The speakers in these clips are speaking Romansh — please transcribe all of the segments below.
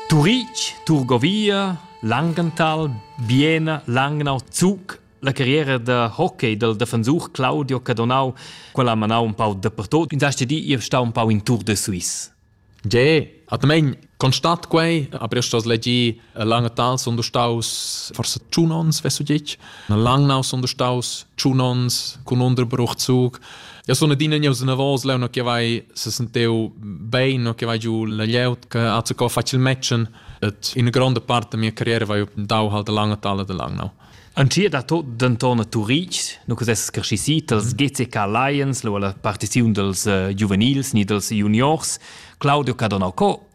Turitg, Turgovia, Langenthal, Biena, Langnau, Zug, la carriera da hockey del defensur Claudio Cadonau, quella ha manau un pau dappertut, in hast di ir stau un pau in Tour de Suisse. Ge, atmain constat quei, aber io sto legir Lange Tal sono staus forse tschun ons, weißt du dich? Lang now sono staus tschun ons con Unterbruchzug. Ja sono dine gneu se nervos leu no che vai se senteu bein, no che vai giù la lieut che hat se co facil matchen. Et in grande parte da mia carriera vai dau halt lange Tal de lang now. An ti da tot denton a Turitg, nu che ses crescisi dals GCK Lions, lo alla partiziun dels uh, giuvenils ni dels juniors, Claudio Cadonacco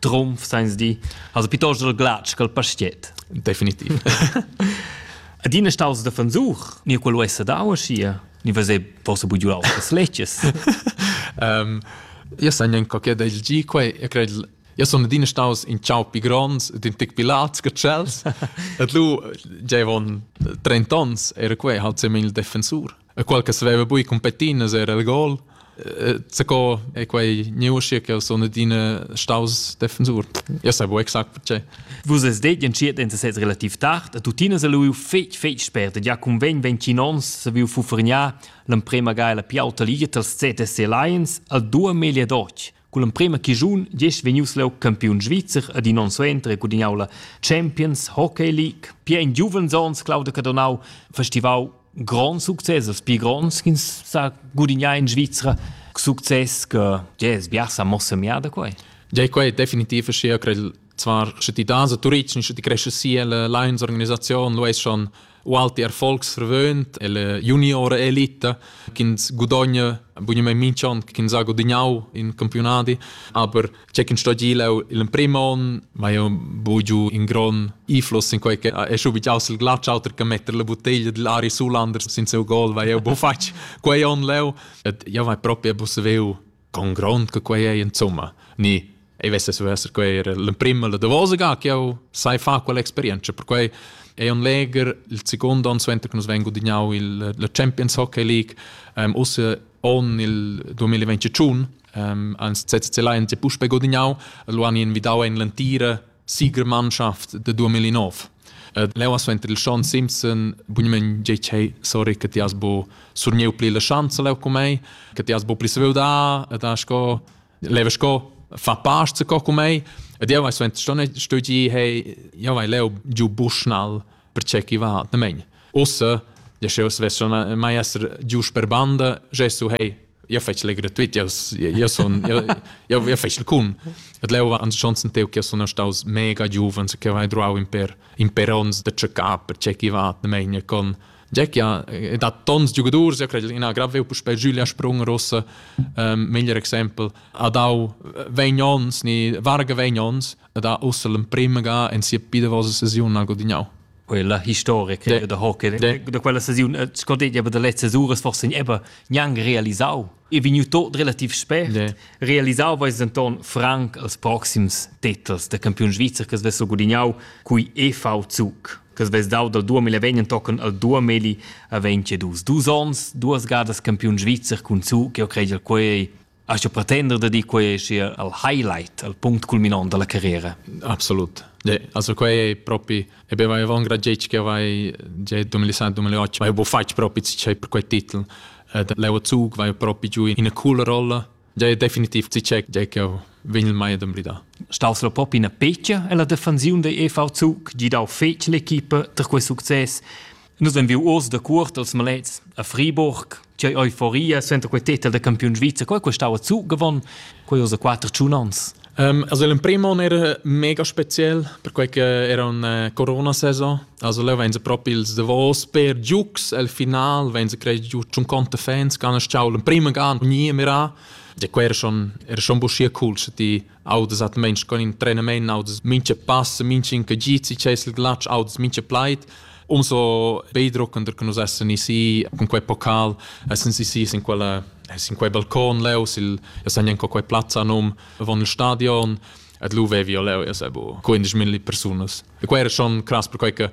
trumf seins di also pitost der glatsch col pastiet definitiv adina staus de versuch ni quello essa dau schia ni vase fosse bugiu auf das leches ähm io san nen qualche del gi quei io cred io sono adina staus in ciao pi gronds din tic pi lats che chels et lu giavon 30 ons era quei halt semil defensur e qual che saveva bui competinas era il gol. Zaco è quei neuscia che sono adina staus defensor. Io sai bu exact perché. Vus es det entschiet en sez relativ tard, a tutina se lu fetg fetg spert e ja convegn 20 ons se viu fufrgnar l'emprema ga la piauta liga tals ZSC Lions al dua melia doc Culla emprema chischun diesch vegnius leu campiun svizzer ed in onn suenter e gudignau la Champions Hockey League. Pia in giuvens onns Claudio Cadonau festivau grand success, els pli gronds ch'ins sa gudignar in Svizra. Success che jazz biasa mossa miada quei. Ja, quei definitiv schier crei zwar sche ti das a Turitg, sche ti cresce sia la Lions organisazion, lu es schon Walter Volksverbund e la juniora elita ch'ins gudogna bunamain minch'on ch'ins ha gudagnau in campiunadi, aber c'è ch'in sto gilau il prim on, ma io bugiu in gron iflos in quei che è schu bigiaus il glatsch auter che metter la bottiglia dell Ari Sulander sin seu gol, weil io bo fatg quei on leu et io vai proprio busseveu con grond che quei ei insomma ni ei vessas esser quei era l'emprema la davosa ga che jau sai fa quell'experienza perquei è un leger il secondo anno suenter che nus vengo dignau il la Champions Hockey League um, usse on il 2021 um, ans CCC Lions e puspe godignau lo han invidau en l'antira Sigur Mannschaft da 2009. Ed leu ha suenter il Schon Simpson bunament tgei che sorry che ti has bo surnieu pli la schanza leu cu mei, che ti has bo pli saviu da ed ha sco leva sco fa past co cu mei. Ed jeu hai suenter schon stugi hey jeu vai leu giu Bushnall perché chi va nemegn. Ussa, ja sch'eu svessa mai esser gius per banda, gesu hei, io fetsch le gratuit, io io sun io io io fetsch cun. Et leu va ans chonsen teu che sun staus mega giuvens che vai druau in per in per ons de cecà perché chi va nemegn con Jack ja da tons giugadurs, ja cred ina grave puspei Julia Sprung rossa, ähm, meglier exempel, a dau vegn ons ni varga vegn ons da ussa l'emprima ga en sia pidavosa sesiun ha gudignau. Quella historica de, da hockey de, da quella sesiun eh, scordeglia aber der letzte Sures forse eben niang realisau e vegnu tot relativ spät de. realisau weis Anton Frank als proxims titels der Campion Svizzer che svesso gudignau cui EV Zug che svess dau dal 2020 tocken al 2022 dus ons duas gadas Campion Svizzer cun Zug e ho credel quei Hast du pretender da dir quei sia al highlight, al punct culminant dalla carriera? Absolut. Ja, also quei è proprio e beh, vai avon gradgetg che vai già 2007-2008 vai bo fatg proprio c'è per quei titel. Eh, Leo Zug vai proprio giù in una cool rolla. Ja è definitiv ci c'è già che vegn il mai ad emblidar. Staus lo pop ina peccia e la defensiun dei EV Zug gidau fetg l'equipa tra quei succes. Nus ein viu uors da cuort als malets a Friburg. C'ei euforia senta quei titel da campiun svizzer, quei quei stau zu gewonnen, quei ussa quattro tschun ans. Um, also l'emprim on era mega spezial, perquei che era una corona-saison. Also leu vein se propi ils davos per giugs, al final vein se crei giu tschun conte fans, che han stau l'emprim gan, nie mirà. E quei era schon, era schon buschia cool, sche ti audas atmeins con in trainement, audas mincha pass, mincha incagit, si c'è il glatsch, audas mincha plaid. Umso beidruckender che nus essen isi con quei pocal, essen isi in quella in quei balcon leu, sil ja san en quei plazza num von il stadion. Ed lu vevi leu, ja sabo, 15.000 persunas. E quei era schon cras per quei che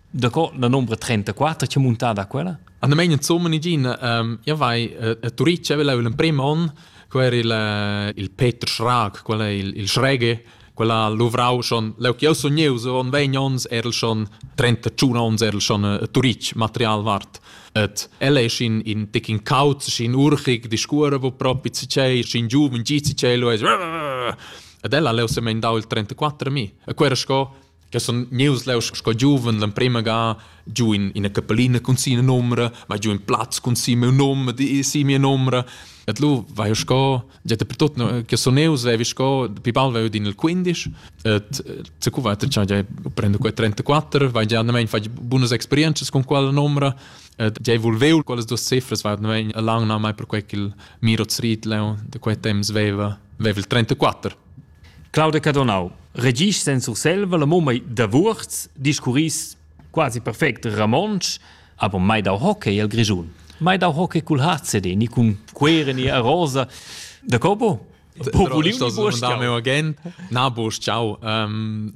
Daco la nombra 34 che muntada quella? An meinen Zummen igin, ähm, ja vai, äh, Turic aveva l'emprim on, quel era il, äh, il Peter Schrag, quel è il, il Schrege, quella luvrau schon, leu che io sognevo, so on 20 ons erl schon, 31 ons erl schon äh, Turic material wart. Et el è in, in tic in cauz, in urchig, di scura, wo propi si c'è, in giuven, gi si c'è, lo è... Ed ella leu se mendau il 34 mi. E quera sco, Che sun gnieus leu sco giuven l'emprema ga giu in ina capellina cun sia numra, ma giu in plaz cun sia miu num, di sia mia numra. Et lu vai eu sco, già per tot che sun eus, vevi sco, pi bal vai eu din il 15, et se cu va già già prendo quei 34, vai già andamein fai bunas experienzas con quella numra, et già volveu quellas duas cifras, vai andamein a lang na mai per quei ch'il Miro Zriet leu de quei temps veva, veva il 34. Claudia Cadonau. Regis sen Surselva la mumma da Wurz discurris quasi perfect Ramonsch, aber mai dau hockey al Grischun. Mai dau hockey cul HCD, ni cun quere ni a rosa. Da copo? Na bosch ciao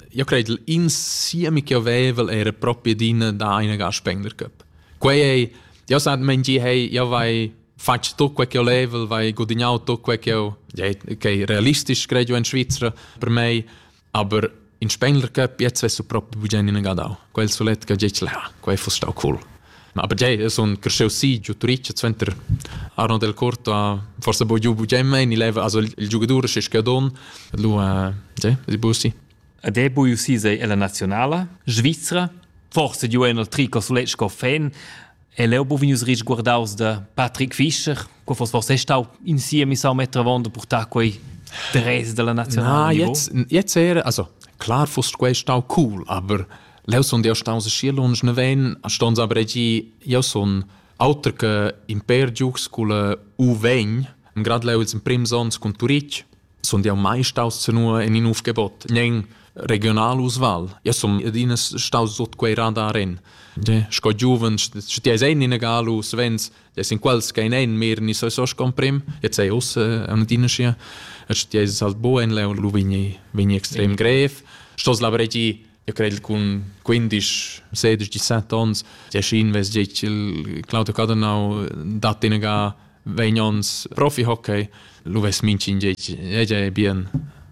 io credo insieme che avevel era proprio din da eine ga Spender Cup quei ei io sa men gi hey io vai fatg tut quei che olevel, vai gudignau tut quei che eu, ja, okay, realistisch credo in Svizzera per me, aber in Spengler Cup jetzt wirst du proprio bugen in Gadau. Quel sulet che giec ha, quei fuss stau cool. Aber ja, son cresceu si giu Turic zenter Arno del Corto a forse bo giu bugen mein, il leva also il giocatore che scadon, lu a ja, di busi. Ed è bu usi sei la nazionala Svizzera, forse giu en il trico sulet sco fan, E leu bu vegnius risguardaus da Patrick Fischer. Quei foss forse stau in siemi sau meter avon da purtar quei dress dalla nazionala. Na, jetzt, jetzt era, also klar foss quei stau cool, aber leu son jeu staus schier lunsch neven, ston aber gi, jeu son auter che imper giugs cul UV, grad leu ils prims ons cun Turitg, Sund jau mai staus senua in in uf gebot, nen regional usval. Ja sun adina staus sut quei radar en. De, sco giuven, sche ti eis ein in galu, svens, des in quals kein ein mehr ni so so comprim, jetzt sei us an adina sia. Sche ti eis halt bo en leu, lu vegni vegni extrem grev. Stos lavregi io credo con 15, 16, 17 onns, ti schien ves gic il Claudio Cadenau dat in ga vegn ons profi-hockey, lu vess mincin ei bien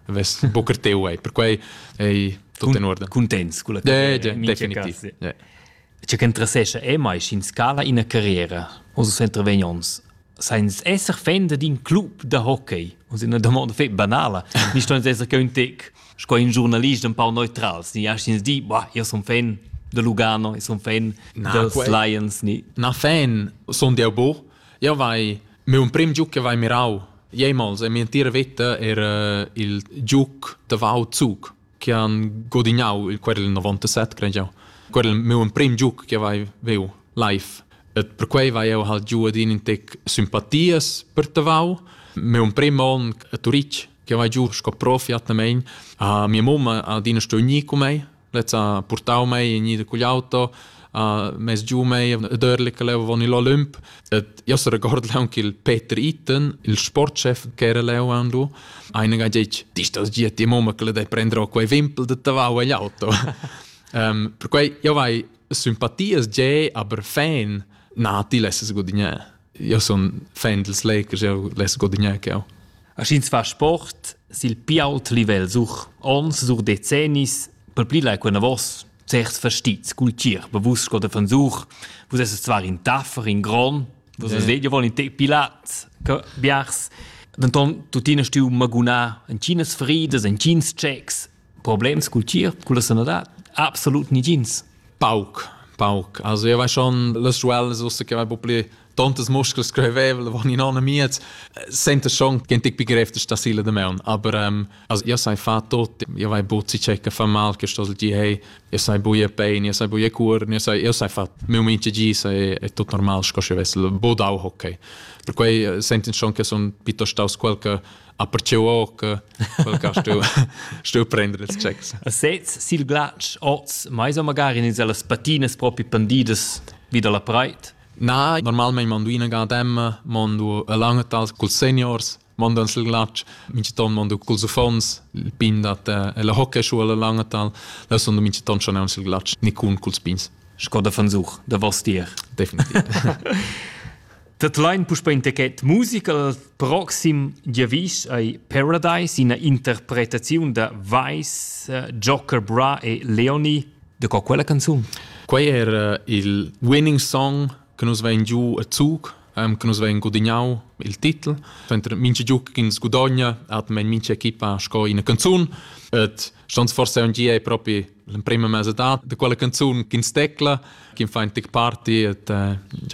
vess bucr teu ei, perquei ei tutto in ordine. Contents con la carriera, definitiv. C'è che interessesce è mai in scala in carriera, o so sempre vegn ons Sainz esser fan d'in club da hockey, und in una domanda fe banala, nicht uns esser che un tec sco in giurnalist empau neutral ni astgins dir bah io sun fan da Lugano e sun fan na, da quei... Lions ni na fan sun deu bu io vai mi un prim giuc che vai mirau Jemals e mi entira veta era il giuc da Vau Zug che han godignau il querel 97 credo jau quel meu prim giuc che vai veu live et per quei vai eu hal giu adin in tec simpatias per tavau meu prim on a Turich che vai giu sco profi atnamein. Uh, mia mamma adina sto ni con me, lezza portau me ni con l'auto uh, mes giu mei e dörle che leu von il Olymp. Et io se record leun che il Peter Itten, il sportchef che era leu andu, eine ga gec, dis das gia ti mamma che le dei prendere quei vimpel de tavau agli auto. um, per quei io vai sympathies ge, aber fan nati lesses gudignè. Io sun fan dils Lakers, eu less guadagnar che eu. Aschins fa sport sil pi ault livel such ons, such decennis, per pli lai quena vos certs verstits cultier, be vus sco de fansuch, vus esses zwar in taffer, in gron, vus yeah. vedio vol in te pilat, che biars. Denton tuttina stiu magunà en Chinas fridas, en Chins checks, Problems cul tgierp, culla sanadad? Absolut nigins. Pauc, pauc. Also io vai schon las schuellas ussa che vai po pli tontas muscles screvevel van in anna miez senta schon gen tic begriff da sile de meun aber ähm, also io sai fa tot io vai buzzi checa fa mal che sto gi hey io sai buie pain io sai buie cur io sai io sai fa meu mince gi sai è tot normal sco sche vessel bodau hockey per quei senten schon che son pitto staus quel che a perciu oca quel ca stu stu prender els checks a sez sil glatsch oz mai so magari in las patinas propi pandidas vi dalla preit na normalmente mondo ina ga dem mondo alanga tas col seniors mondo sil glatsch minchiton mondo col zufons il pin dat e la hockey schu alla langa tal da sondo minchiton schon sil glatsch ni cun col spins Skoda von Such, da was dir. Definitiv. Dat lain puspè in techet musica al proxim giavisch ei Paradise, ina interpretaziun da Weiss, eh, Joker Bra e Leoni. De co quella canzun? Quei era il winning song che nus vein giu a Zug, um, che nus vein gudignau il titel. Mentre mince giu che ins gudogna, hat mein mince equipa sco ina canzun. Et stans forse un gie propri l'emprima mesa da de quella canzun che ins tecla, che fa in tic party et eh,